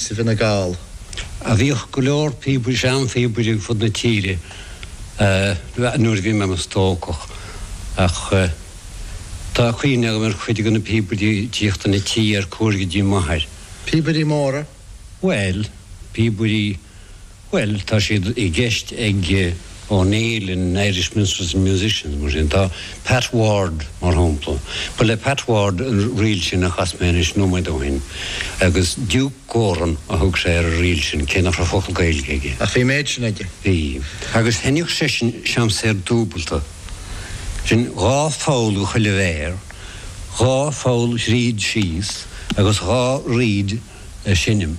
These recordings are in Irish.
sa bhFine Gall. a bhíodh go leor píobairí, seanphíobairí ar fud na tíre nuair a bhí mé i mo stócach. Ach tá cuimhne agam ar chuid de na píobairí ag tíocht chun an tí ar cuaird go dtí m'athair. Píobairí móra? Bhuel, píobairí Bhuel, tá siad i gceist ag O'Neill in Irish Minstrels and Musicians, mar sin. Tá Pat Ward, mar shampla. Ba le Pat Ward an ríl sin a chas mé anois nóiméad ó shin. Agus Diúc Goran a thug sé ar an ríl sin, cé nach raibh focal Gaeilge aige. Ach bhí an méid sin aige. Bhí. Agus sheinneadh seisean seamsúr dúbalta. Sin dhá pholl do chuile mhéar, dhá pholl thríd síos agus dhá reed á sheinm.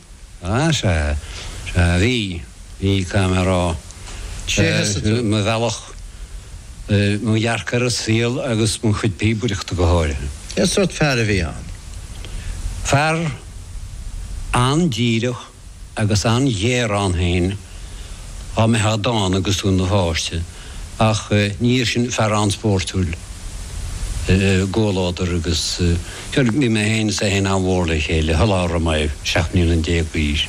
Sea, sea. Sea, bhí. Bhí, caithfidh mé a rá. Sheas tú. Mo bhealach, mo dhearcadh ar an saol agus mo chuid píobaireachta go háirithe. Cén sórt fear a bhí ann? Fear an-díreach agus an-ghéar ann féin, dá mbeitheá dána agus tú i do pháiste. Ach ina dhiaidh sin fear an-spórtúil i gcomhluadar agus bhí mé féin is é féin an-mhór le chéile, shula raibh mé seacht mbliana déag d'aois.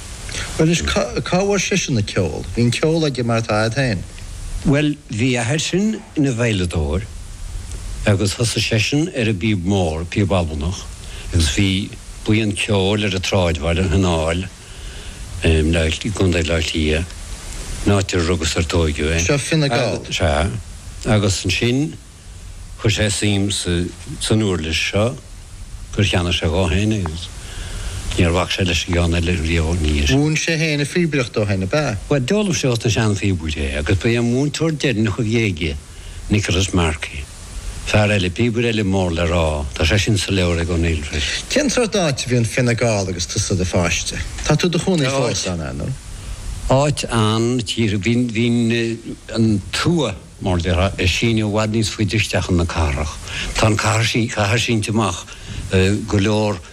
Bhuel anois, cá bhfuair seisean an ceol? Bhí an ceol aige mar atá a'd féin? Bhuel, bhí a athair sin ina veidhleadóir agus thosaigh seisean ar an bpíob mhór, píob Albanach, agus bhí buíon ceoil ar an tsráidbhaile, an Naul, um Leighilt i gContae Átha Cliath, an áit ar rugadh 's ar tóigeadh é. Seo Fine Gall? Sea. Agus ansin, chuir sé suim san uirlis seo gur cheannaigh sé dhó fhéin é agus níor bhac sé leis an gceann eile riamh ina dhiaidh. Mhúin sé fhéin an phíobaireacht dó fhéin, ab ea? Bhuel, d'fhoghlaim sé ós na sean-phíobairí é agus ba é an múinteoir deireannach a bhí aige. Nicholas Markey. Fear eile, píobaire eile mór le rá, tá seisean sa leabhar ag O'Neill freisin. Cén sórt áit a bhí i bhFine Gall agus tusa i do pháiste? Tá tú i do chónaí fós ann, ar ndóigh. Áit an-tsaoir. Bhí an tuath, mar a déarfá, ag síneadh i bhfad níos faide isteach chun na cathrach. Tá an cathair sínte amach go leor.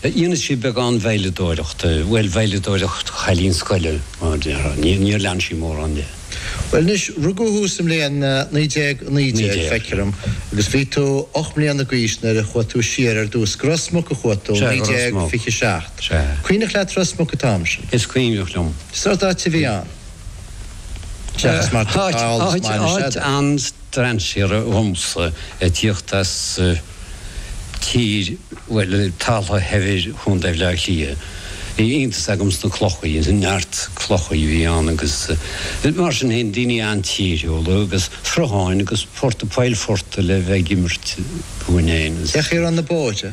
Dhéanadh sí beagán veidhleadóireachta, bhuel, veidhleadóireacht chailín scoile, mar a déarfá. Níor lean sí mórán de. Bhuel anois, rugadh thú sa mbliain 1919, feictear dom, agus bhí tú ocht mbliana d'aois nuair a chuaigh tú siar ar dtús. Go Ros Muc a chuaigh tú, 1927. Cuimhneach leat Ros Muc an t-am sin? Is cuimhneach liom. Sórt áit a bhí ann, seachas mar atá thall is maith anois, n'fheadar. strainséartha dhomsa a' tíocht as tír, bhuel, talamh shaibhir Chontae Bhleá Cliath. Bhí iontas agam sna clochaí, neart clochaí a bhí ann agus mar sin fhéin, daoine an-tíriúla agus srutháin agus portaigh, poill phortaigh le bheith ag imirt dúinn fhéin. Bheadh sé ar an na bóithre.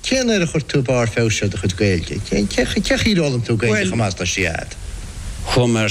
Cén uair a chuir tú barr feabhais ar do chuid Gaeilge? Cé chaoi ar fhoghlaim tú Gaeilge chomh deas? Tá siad.